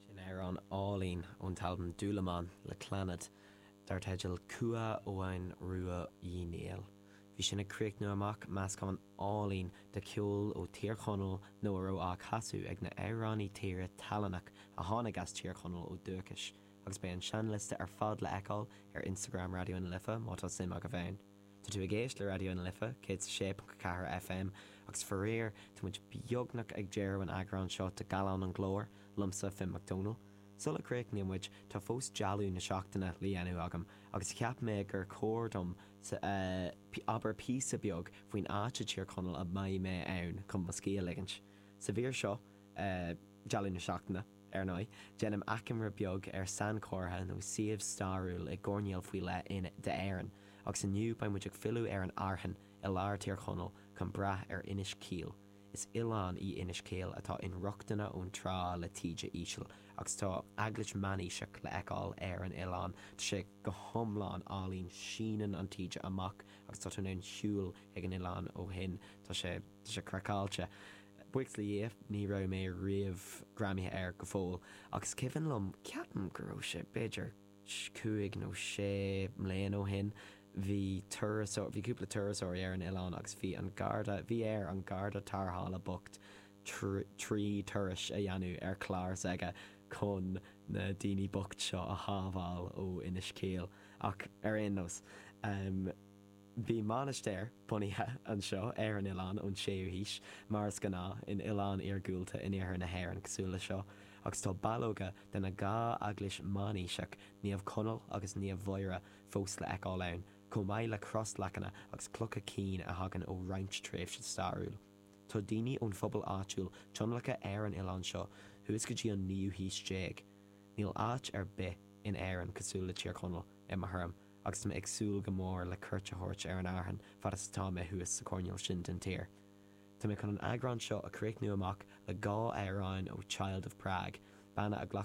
Sin amhrán álainn ón t-albam Dúlamán le Clannad dar teideal Cumha Eoghain Ruaidh Uí Néill. Bhí sin ag críochnú amach meascán álainn de cheol ó Thír Chonaill nó a raibh á chasadh ag na h-amhránaí tíre tallannach a tháinig as Tír Chonaill ó dúchais agus beidh an seinnliosta ar fad le fheiceáil ar Instagram Raidió na Life má tá suim agaibh ann. Tá tú ag éist le Raidió na Life 106.4 FM agus faraor tá muid beagnach ag deireadh an eagrán seo de Gallán an Ghlóir liomsa, Finn Mac Dónaill. Sula gcríochnaíonn muid tá fós Dealbh na Seachtaine le dhéanamh agam agus cheap mé gur chóir dom abair píosa beag faoin áit i Tír Chonaill a mbeidh mé ann chun mo scíth a ligint. Sa mhír seo. Dealbh na Seachtaine, ar ndóigh, déanaim achoimre beag ar sainchomhartha nó suíomh stairiúil i gcoirnéal faoi leith in, de, Éirinn, agus inniu beidh muid ag filleadh ar an Fhearthainn i lár Thír Chonaill chun breathnú ar Inis Caoil. Is oileán í Inis Caoil atá inrochtana ón trá le taoide íseal agus tá eaglais meánaoiseach le fheiceáil ar an oileán. Tá sé go hiomlán álainn, síneann an taoide amach agus tá tú in ann siúl ag an oileán ó shin. Tá sé. Tá sé craiceáilte. Buíochas le Dhia, ní raibh mé riamh greamaithe air go fóill, ach is cuimhin liom, ceapaim go raibh sé b'fhéidir cúig nó sé mbliana ó shin, bhí turasóir, bhí cúpla turasóirí ar an oileán agus bhí an garda, bhí air an garda tarrthála bocht trí turais a dhéanamh ar chlár s'aige chun na daoine bocht seo a shábháil ó Inis Caoil. Ach ar aon nós. Bhí mainistir bunaithe anseo ar an oileán ón 6ú haois, mar is gnáth in oileáin iargúlta in iarthar na hÉireann cosúil le seo, agus tá ballóga de na dhá eaglais meánaoiseach, Naomh Conall agus Naomh Mhuire, fós le fheiceáil ann, chomh maith le crosleacanna agus clocha cinn a thagann ó roinnt tréimhse stairiúil. Tá daoine ón phobal áitiúil tionlactha ar an oileán seo thuas go dtí an naoú haois déag. Níl áit ar bith in Éirinn cosúil le Tír Chonaill, i mo thuairim, agus tá mé ag súil go mór le cuairt a thabhairt ar an Fhearthainn fad is atá mé thuas sa choirneál sin den tír. Tá mé chun an eagrán seo a chríochnú amach le dhá amhráin ó Child of Prague, banna a ghlac